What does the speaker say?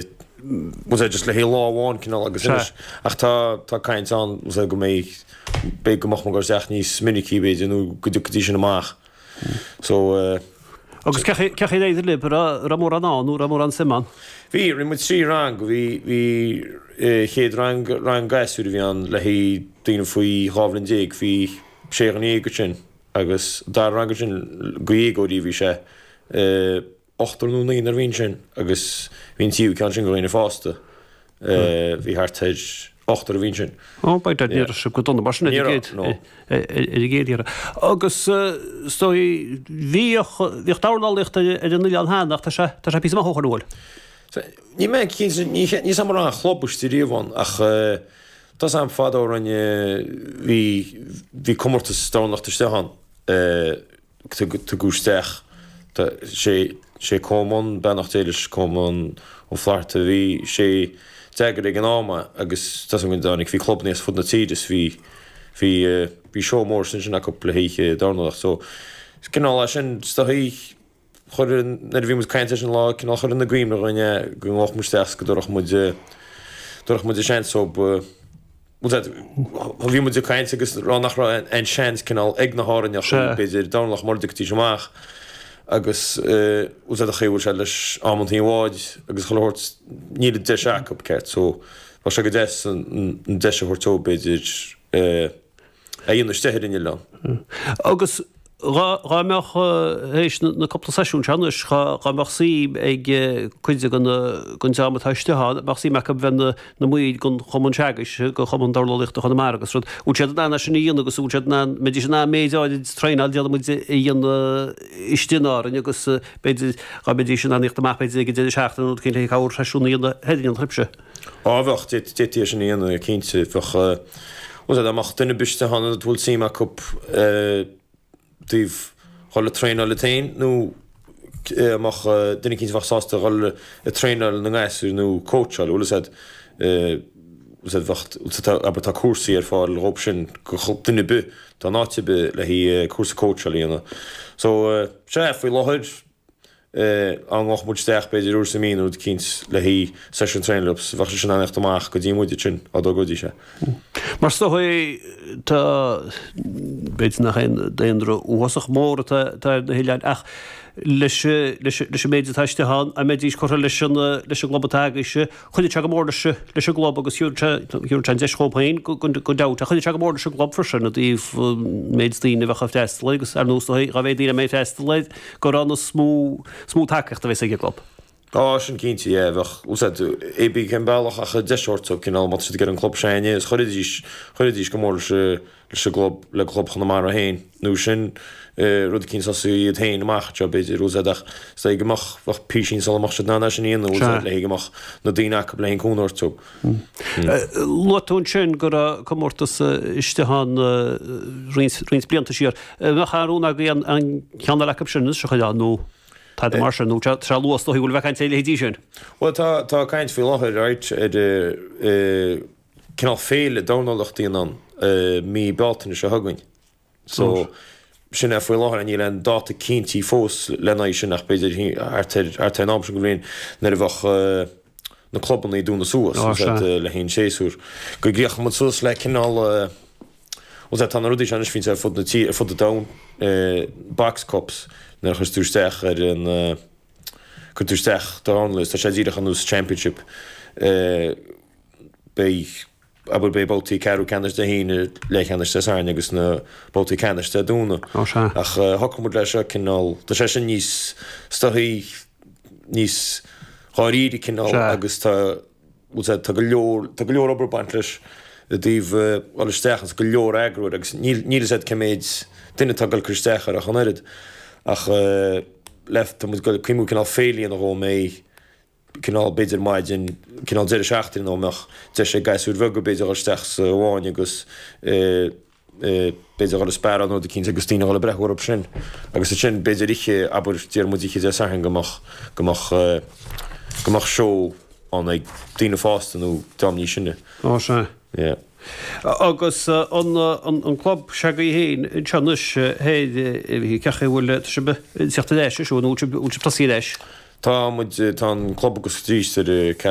Is é just le haghaidh lá amháin cineál agus anois. Ach tá tá caint ann go mbeidh beidh go mbeadh muid ag goil isteach níos minicí b'fhéidir nó go dtiocfaidís sin amach. So eh. Agus cé cé chaoi ar éirigh lib? Raibh raibh mórán ann nó raibh mórán suim ann? Bhí, rinne muid trí rang. Bhí bhí eh chéad rang rang gasúir a bhí ann le haghaidh daoine faoi dhá bhliain déag. Bhí sé dhuine dhéag ansin agus dara rang ansin, do dhéagóirí a bhí sé eh. ochtar nó naonúr a bhí ansin agus an tríú ceann ansin do dhaoine fásta. Bhí thart ar ochtar a bhí ansin. Ó by dad ní raibh sé go dona mar sin ar an gcéad iarraidh. Agus is dóichí bhíodh bhíodh dornálaíocht ar an oileán cheana ach tá sé tá sé píosa maith ó shin, an bhfuil? Níl mé cinnte níl níl a fhios agam an raibh aon chlub istigh riamh ann ach tá a fhios agam fadó rinne bhí bhí comórtas dornálaíochta istigh ann Tugadh isteach sé Coleman, beannacht Dé leis, Coleman Ó Flatharta. Bhí sé a d'eagraigh ag an am agus tá a fhios agam go dtáinig, bhí clubanna as fud na tíre is bhí, bhí, bhí seó mór ansin acu le hoíche dornálaíocht. So, cineál as sin, is dóichí, chuir, nuair a bhí muid ag caint air sin lá, cineál chuir i gcuimhne dhúinn é go ngabhfadh muid isteach is go dtabharfadh muid, dtabharfadh muid an seans dóibh. Bhí muid ag caint agus rá nach raibh aon seans cineál ag na hÁrainneachaí, b'fhéidir, dornálaíocht mura dtiocfaidís amach agus tá a fhios agat an chaoi a bhfuil sé leis amantaí báid agus chuile shórt, níl an deis acu, ceart, so bheadh sé go deas an deis a thabhairt dóibh, b'fhéidir, é a dhéanamh istigh ar an oileán. Agus Dhá mbeadh, tar éis na cúpla seisiún seo anois, dhá mbeadh suim ag cuid den dream atá istigh ann, bheadh suim acu bheith ina mbaill den chumann seo agaibhse, de chumann dornálaíochta Chonamara agus rud, bhfuil siad in ann é sin a dhéanamh agus bhfuil siad in ann, mbeidís in ann méid áirid traenáil déarfaidh muid a dhéanamh istigh in Árainn agus b'fhéidir, dhá mbeidís in ann thíocht amach b'fhéidir ag an deireadh seachtaine nó rud éicint le haghaidh corrsheisiún a dhéanamh in éineacht libhse. Á, bheadh, d'fhéadtaí é sin a dhéanamh, cinnte, bheadh, bhuel, dá mbeadh duine ar bith istigh ann a bhfuil suim acu i dtaobh dhul ag traenáil iad féin nó a mbeadh duine eicínt a bheadh sásta dhul ag traenáil na ngasúir nó cóitseáil, bhuel, is ea, is ea, bheadh, abair, tá cúrsaí ar fáil dhóibh sin, do dhuine ar bith atá in áit ar bith le haghaidh cúrsa cóitseála a dhéanamh. So, sea, faoi láthair, dá ngabhfadh muid isteach, b'fhéidir, uair sa mhí nó rud eicínt le haghaidh seisiún traenáil leo, so, bheadh siad sin in ann a theacht amach go dtí muide ansin, dá dtogróidís é. Mar is dóichí, tá, b'fhéidir nach aon daonra uathasach mór atá ar na hoileáin, ach leis an méid atá istigh ann, dá mbeidís curtha leis an gclub atá agaibhse, Chuideodh sé go mór leis an gclub agus thabharfadh sé an deis dhóibh féin gan dabht. Ach chuideodh sé go mór leis an gclub freisin i dtaobh an méid daoine a bheadh ag freastal air agus ar ndóigh dá mhéid daoine a mbeidh ag freastal air gurb ann is mó is mó tacaíocht a bheas ag an gclub. Tá sin cinnte, yeah. Bheadh, bhfuil a fhios agat, pé bí cén bealach ach deis a thabhairt dóibh cineál má tá siad ag iarraidh an club a joineáil is chuirfidís, chuirfidís go mór leis an. leis an gclub, le Club Chonamara féin, nó sin rud eicínt a thosaí iad féin amach anseo, b'fhéidir, bhfuil a fhios agat, ach is é go mbeadh, bheadh písín sul a mbeadh siad in ann é sin a dhéanamh, bhfuil a fhios agat, le haghaidh go mbeadh na daoine acub le haghaidh an cúnamh a thabhairt dóibh. Luaigh tú ansin go raibh comórtas istigh ann roinnt, roinnt blianta siar. An mbeadh aon rún agaibh an, an ceann eile acub sin anois a choinneáil nó tada mar sin, nó tá, tá sé luath, is dócha go fóill a bheith ag caint ar a leithéidí sin? Bhuel tá, tá caint faoi láthair, right, ar eh, cineál féile dornálaíochta anonn i mí Bealtaine seo chugainn. So sin é faoi láthair. Níl aon dáta cinntithe fós lena aghaidh sin ach b'fhéidir thart ar thart ar an am seo de bhliain nuair a bheadh na clubanna ag dúnadh suas, bhfuil a fhios agat, Sea. le haghaidh an séasúr. Go gcríochnóidh muid suas le cineál eh, bhuel sea, tá na rudaí seo anois fite ar fud na tíre, ar fud an domhain, eh, Box Cups, nuair a chuireann tú isteach ar an eh, cuireann tú isteach do dhornálaí is tá sé díreach ar nós Championship. Eh. beidh, abair, beidh babhtaí ceathrú ceannais Dé hAoine, leathcheannais Dé Sathairn agus na babhtaí ceannais Dé Domhnaigh. Ó sea. Ach shocraigh muid leis seo cineál, tá sé sin níos stuthaí, níos dáiríre cineál agus tá, bhfuil sé, tá go leor, tá go leor obair ag baint leis i dtaobh dhul isteach agus go leor eagrú agus níl, níl a fhios agat cé méid duine atá ag dul ag cur isteach air ach an oiread. Ach le, tá muid ag dul ag cuimhniú cineál féile a dhéanamh dhó, go mbeidh. cineál, b'fhéidir maidin, cineál deireadh seachtaine nó mbeadh deis ag gasúir bheaga, b'fhéidir, a dhul isteach sa bhfáinne agus, b'fhéidir, a dhul ag spearáil nó rud eicínt agus daoine a dhul ag breathnú orthu sin. Agus ansin, b'fhéidir, oíche, abair, déarfadh muid oíche Dé Sathairn go mbeadh, go mbeadh, go mbeadh seó ann ag daoine fásta nó dream níos sine. Ó, sea. Yeah. Agus an, an, an club se'agaibh fhéin anseo anois, thoir, eh, cén chaoi a bhfuil, tá sibh ag teacht ar ais, seo, nó bhfuil sibh, bhfuil sibh ag tosaí ar ais? Tá muid, tá an club ag oscailt aríst ar, eh, Carrowbin.